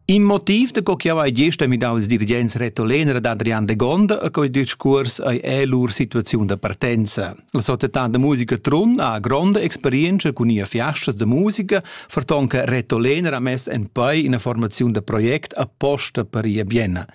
In motiv da co chiau ei gest midau ils dirigents retolener ad Adrian Degonda e quei discuors ei è lur situaziun da partenza. La società da musica Trun ha gronda experienza cun ia fiastas da musica, ferton che retolener ha mess en pei ina formaziun da project apposta per ia Bienna.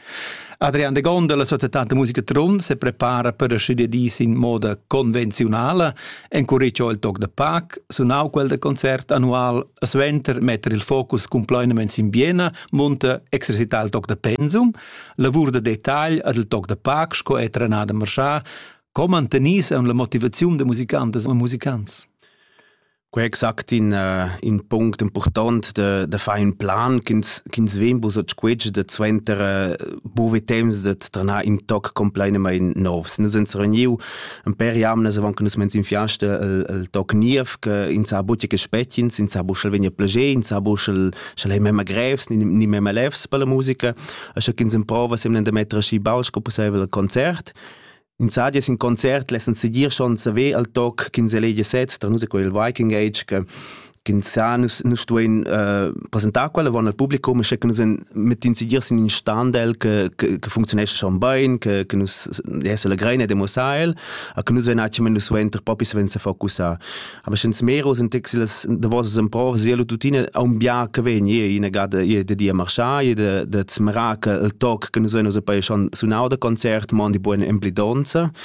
Adrian de Gonda, la società de musica Trun, se prepara per scidi dis in moda convenzionala, encuricio il toc de Pac, sunau quel de concert annual Suenter metter il focus cumplainament sin Biena munta exercitar il toc da pensum, lavur da detagl ad il toc da pac sco è trenada marschà, co mantenis en la motivaziun da musicantas e musicants. Quei exact in, uh, in punct important de, de fare un plan ch'ins ch'ins vem bus a squetsch de suenter uh, buve temps de tranar in toc completamente novs. Nus uns reuniu ein per jamnas avon che nus mens in fiasta el, el toc niev che in sa buti che spetgins in sa bu schel vegna plager in sa bu schel schel ei memma grevs ni, ni memma lefs per la musica e sche ch'ins improva semne da mettere schi baus co possibel al concert In sadia sin concert lessen seguir schon saver al toc ch'ins elegia sez, tra nus è quel Viking Age che Ginzà nus, nus stuein uh, presentar quella von al publicum, sche che nus mit incidir sin in standel che, che, che funktionesce schon bein, che, che nus se legrein e demossar el, a che nus ven atschem nus ven ter popi ven se focussar. Aber schon smero sind texiles de vos en pro sielo tutine a un bia che ven je in gada je de dia marchar, je de de zmra che el toc che nus ven us poi schon sunau de concert, mon di buone emblidonza,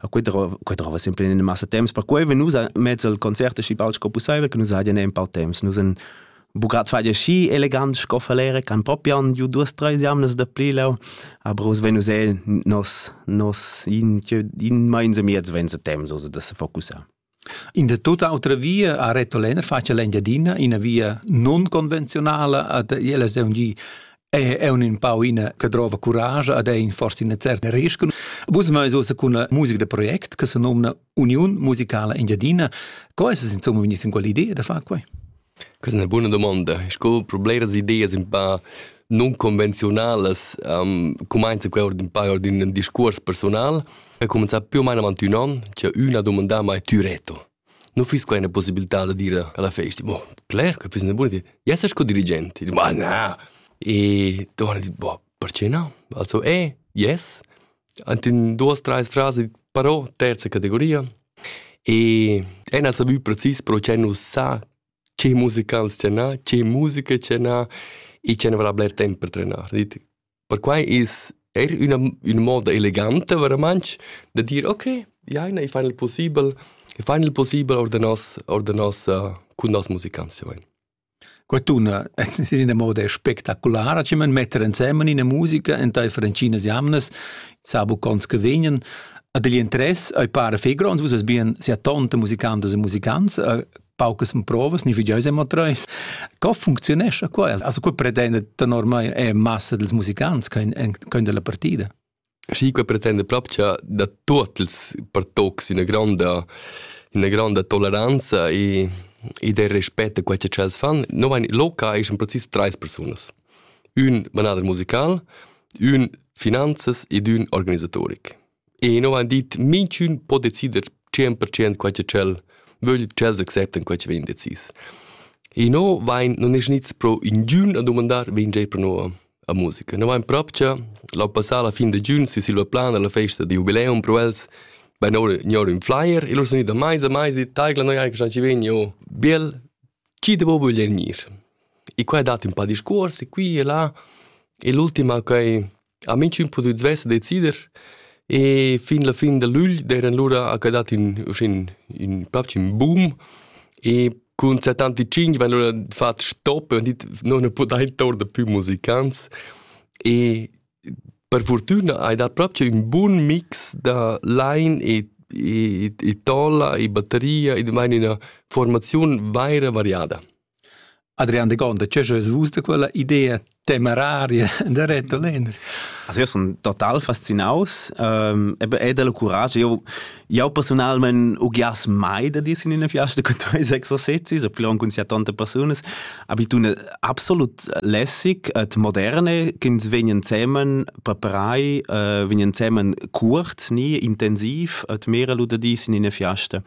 A quei drova, quei drova sempre in massa temps, perquei ve nus mezzo il concert aschi bald sco pusseivel, che nus haien ein paar temps. Nus en bucat fai aschi elegant sco falere, can propian ju duas treis jamnas da pli lau, aber us ven us el nos nos in in meinse miez vense temps, so da se focussar. In da tut autra via ha Reto Lenner fatg l'Engiadina, ina via nunconvenziunala ad l'ELSM G è eu ün pau ina che drova curage ed è in forse ina certa rescun. Vus meis uossa cun una musica da project che se nomna Uniun Musicala Engiadina. Co es es insomma vegniss in quell'idea da far quai? Questa è ina buna domanda. Sco per bleras ideas un pa nunconvenziunalas um, cumainza quai ord ün pa ord ün discuors persunal e cumenzà più o meno avanti ün an c'è üna domanda mai tü reto. Non füss quai üna possibilità da dire alla festa, boh, cler che füss üna buona idea. Jess sco dirigent. E dico, ma na. E torna e dico, boh, Perche no? Also e, yes, ant ün duos, trais frasi, però terza categoria. E ün ha savü precis pro che nu sa che musicants tschernà, che musica tschernà e che ne vala bler temp per trenar. Dit, perquai es eir üna üna moda eleganta veramantsch da dir okay, jaina, i fain il pussibel, i fain il pussibel our da nos our da nossa cun noss musicants, ja vain. Quattuna es in ina moda spectaculara chi man metter insemen ina musica entaifer ntginas jamnas, sa bucons che vegnan. Ad igl interess ei para fei gronds, vus eis bien sia tonta musicantas e musicants, paucas provas, ni figieu sem treis. Co funcziunescha quai? Also, quei pretenda tenor mei è massa dals musicants ch'ein dalla partida. Schi qua pretenda propcha da tuot ils pertocs üna gronda üna gronda toleranza e ed il respet a quai cha tschels fan. No vain loca eschan precis trais persunas. Ün manader musical, ün finanzas ed ün organisatoric. E no vain dit minchün po decider 100% quai cha tschel vögl, tschels acceptan quai cha vegn decis. E no vain, non es gnits pro ingün a dumandar, vegn già pro no a musica. No vain propcha l'an passà la fin da giun si silva plana la festa da jubileum pro els vain oura gnor ün flyer e lur sun gnit a maisa, maisa dit taigla noi eir quist'an chi vegn jo bel, chi devo vögler gnir? E qua è dat ün pa discuors e qui e là e l'ultima ch'ai ha minchün pudü svess decider e fin la fin da lügl d'eran lura ha que dat ün uschè ün propcha ün boom E cun 75 van lura fat stop e dit non ne podain torder più musicants e per fortuna hai dat proprio un buon mix da line e e, e tolla e batteria e meine eine Formation vaira variada. Adrian de Gonda, che schas vus da quella idea temeraria de Reto Lehner? Also io sono total fascinaus ähm, eben è del courage io io personalmente ugias mai da dir in una fiasta con tuoi exercizi so plon con sia tante personas abitune absolut lässig et moderne ch'ins vegnan zemen preparai äh, vegnan zemen curt nie intensiv et mera lu da dis in una fiasta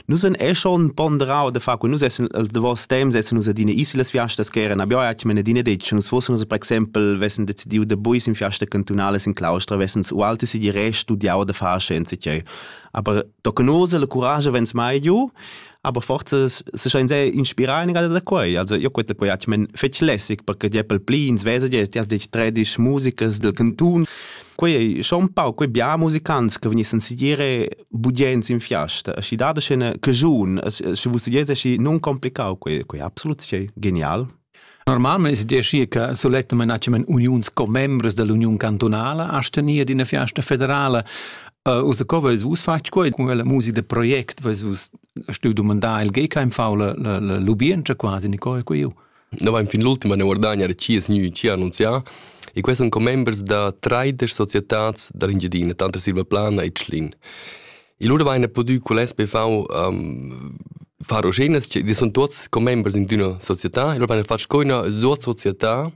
Nus en è schon ponderau de fa cu nus essen els de vos temps essen nus adine isolas fiastas che eran abia atg mene dine detg nus fossen nus per exempel vessen decidiu de buis in fiasta cantunales in claustra vessen u alte si di re studiau de far scienze che aber tocanose le courage vens mai giu aber forza se schein se inspirar in da quei also io quetta quei atg men fetg lässig perché die pel pli ins vese die ti has dich tredisch musicas del cantun quei schon un pau quei bia musicants che venissen si dire bugens in fiasta, aschi dada scena cajun, sche vus dies aschi non complicau quei, quei absolut sche genial. Normalment es decir che sulettament hacemen uniuns commembres dell'Union cantonala a stenia d'ina fiasta federala. Uh, usa co vais vus fatg quei con la musica de project vais vus stu domandar il GKMV la la la lubien quasi ni coi quei Noi vain fin l'ultima ne guardagna chi es gnü chi ha annunzià e quai sun commembers da traidesch societats da l'Engiadina, tanter Silvaplana e Tschlin. E lura vaina pudü cul SPV um, far oschenas, che sun tuots commembers in d'üna società e lura vaina fat sco üna sozietà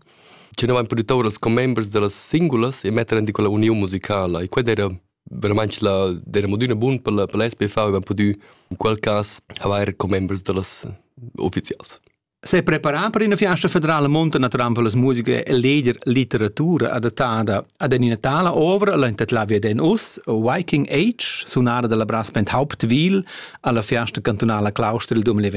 che noi vain pudü tour als commembers da las singulas e metter in quella uniun musicala e quella era veramente la, era mod üna bun per la, per la SPV e vain pudü in quel cas avair commembers da las uffizials. S'è preparà per ina fiasta federala monta naturalmente per las musica e leger litteratura adattada ad ina tala ovra la entitlavia den us Viking Age sunara dalla brass band Hauptwil alla fiasta cantunala Claustra il 2020.